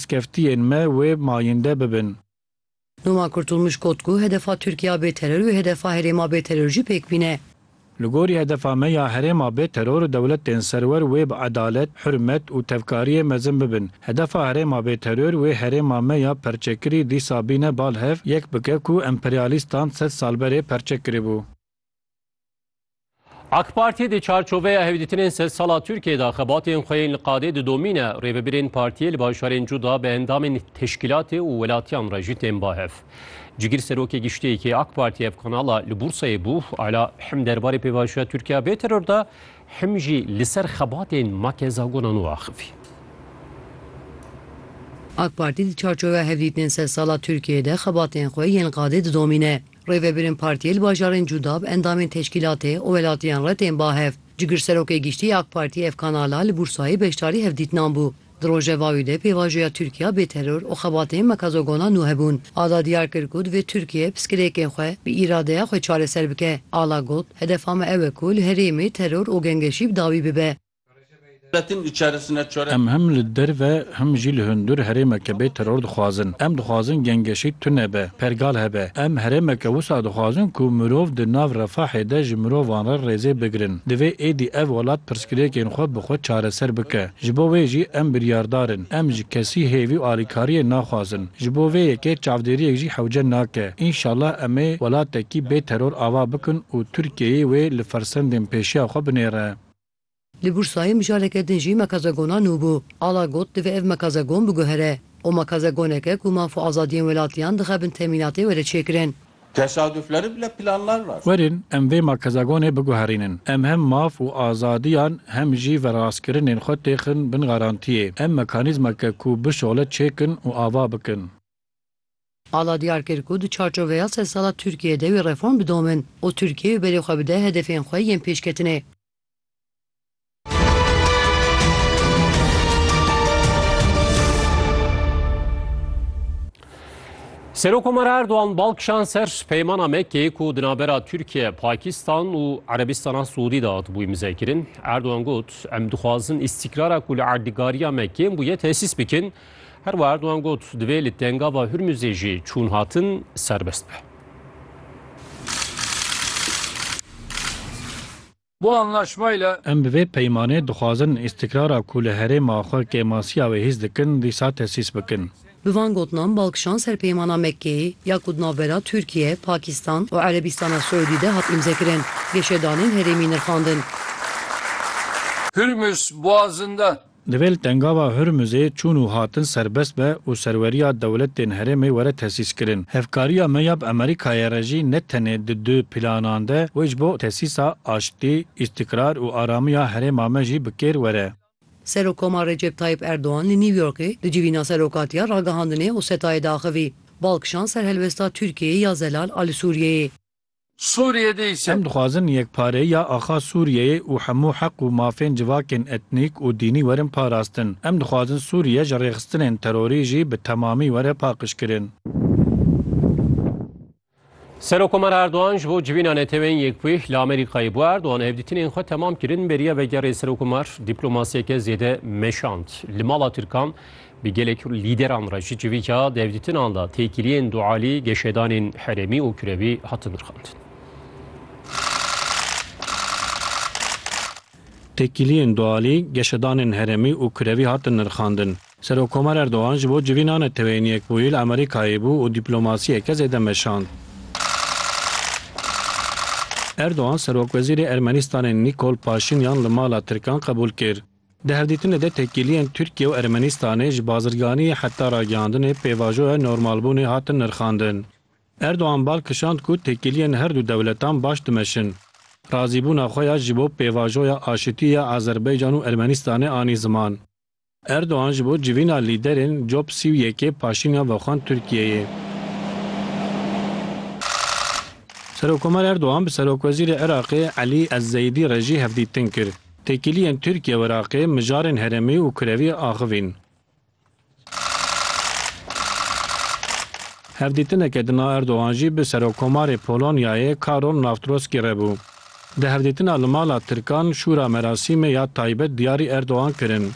Skeftiyên me wê mayinde bibin. Numa Kurtulmuş got ku hedefa Tirkiya bê teror û hedefa herêma bê teror jî pêk bîne. Li gorî hedefa me ya herêma bê teror dewletên serwer wê bi edalet, hurmet û tevkariyê mezin bibin. Hedefa herêma bê teror wê herêma me ya perçekirî dîsa bîne bal hev yek bike ku emperyalîstan sed sal berê perçe kiribû. AK Partiyê di çarçoveya hevdîtinên sedsala Tirkiyê de xebatên xwe yên li qadê didomîne. Rêvebirên partiyê li bajarên cuda bi endamên teşkîlatê û welatiyan re jî tên ba hev. Cigir Serokê Giştî yê AK Partiyê ev kanala li Bursayê bû. Ala him derbarê pêvajoya Tirkiya bê teror de him jî li ser xebatên Makeza Gona Nû axivî. AK Partî di çarçoveya hevdîtinên sedsala Tirkiyê de xebatên xwe yên li qadê didomîne. Rêvebirên Partiyê li bajarên Cûdab, endamên teşkîlatê û welatiyan re tên ba hev. Cigirserokê giştî ya AK Partiyê Efkan Ala li Bursayê beşdarî hevdîtinan bû. Di rojeva wî de pêvajoya Tirkiya bê teror û xebatên mekazogona nû hebûn. Ala diyar kir ku divê Tirkiye piskilêkên xwe bi îradeya xwe çareser bike. Ala got, Hedefa me ew e ku li herêmê teror û gengeşî bi dawî bibe. Em him li derve him jî li hundir herêmeke bê teror dixwazin. Em dixwazin gengeşî tune be, pergal hebe. Em herêmeke wisa dixwazin ku mirov di nav refahê de ji mirovan re rêzê bigirin. Divê êdî ev welat pirsgirêkên xwe bi xwe çareser bike. Ji bo wê jî em biryardar in. Em ji kesî hêvî û alîkariyê naxwazin. Ji bo vê yekê çavdêriyek jî hewce nake. Înşallah em ê welatekî bê teror ava bikin û Tirkiyeyê wê li fersendên pêşiya xwe binêre. Li Bursayê mijareke din jî mekazegona nû bû. Ala got, Divê ev mekazegon biguhere. O mekazegoneke ku maf û azadiyên welatiyan dixe bin temînatê were çêkirin. Tesadufleri bile planlar var. Werin em vê mekazegonê biguherînin. Em hem maf û azadiyan hem jî verrastkirinên xwe têxin bin garantiyê. Em mekanîzmeke ku bişole çêkin û ava bikin. Ala diyar kir ku di çarçoveya sed sala Tirkiyeyê de wê reform bidomin û Tirkiye wê berê xwe bide hedefên xwe yên pêşketinê. Serokkomara Erdogan bal kişand ser peymana Mekkeyê ku di navbera Tirkiye, Pakistan û Erebistana Siûdî de hatibû îmzekirin. Erdogan got, Em dixwazin îstîkrara ku li erdîgariya Mekkeyê bûye tesîs bikin Her wiha Erdogan got, divê li Tengava Hurmuzê jî çûn hatin serbest be. Bu anlaşma ile Em bi vê peymanê dixwazin îstikrara ku li herêma xwe kêmasiya wê hîs dikin dîsa tesîs bikin. Bi van gotinan balkişan ser Peymana Mekkeyê ya ku di navbera Tirkiye, Pakistan û Erebîstana Siûdî de hat îmzekirin, geşedanên herêmî nirxandin. Hurmuz Boğazı'nda Divêl Tengava Hurmuzê çûn û hatin serbest be û serweriya dewletên herêmê were tesîskirin. Hevkariya me ya bi Amerîkayê re jî ne tenê di du planan de wê ji bo tesîsa aştî, îstîkrar û aramiya herêma me jî bi kêr were. Serokomar Recep Tayyip Erdogan li New Yorkê di civîna serokatiya ragihandinê Osetayê de axivî. Bal kişand ser helwesta Tirkiyeyê ya zelal a li Sûriyeyê. Sûriyê de îse. Em dixwazin yekpareyiya axa Sûriyeyê û hemû heq û mafên civakên etnîk û dînî werin parastin. Em dixwazin Sûriye ji rêxistinên terorî jî bi temamî were paqijkirin. Serokkomar Erdogan ji bo civîna Neteweyên Yekbûyîh li Amerîkayê bû. Erdogan hevdîtinên xwe temam kirin, bêriya vegerê Serokkomar dîplomasiyeke zêde meşand. Li mala Tirkan Bi gelek lîderan re ji civîka devdîtinan de têkiliyên dualî, geşedanên herêmî û kirevî hatin rixandin. Têkiliyên dualî, geşedanên herêmî û kirevî hatin nirxandin. Serokkomer Erdogan ji bo civîna Neteweyên Yekbûyî li Amerîkayê bû û dîplomasiyeke zêde meşand. Erdogan Serokwezîrê Ermenîstanê Nîkol Paşînyan li mala Tirkan qebûl kir. Di hevdîtinê de têkiliyên Tirkiye û Ermenistanê ji bazirganiyê heta ragihandinê pêvajoya normalbûnê hatin nirxandin. Erdogan bal kişand ku têkiliyên her du dewletan baş dimeşin. Razîbûna xwe ya ji bo pêvajoya aşitî ya Azerbaycan û Ermenistanê anî ziman. Erdogan ji bo civîna lîderên cop sî û yekê Paşînyan vexwend Tirkiyeyê. Serokkomer Erdogan bi serokwezîrê Iraqê Elî Ez-Zeîdî re jî hevdîtin kir. Têkiliyên Tirkiye û Iraqê mijarên heremî û kurevî axivîn. Hevdîtineke di na Erdogan jî bi Serokkomarê Polonyayê Karol Nawtroskî re bû. Di hevdîtina li mala Tirkan Şûra merasîmê ya taybet diyarî Erdogan kirin.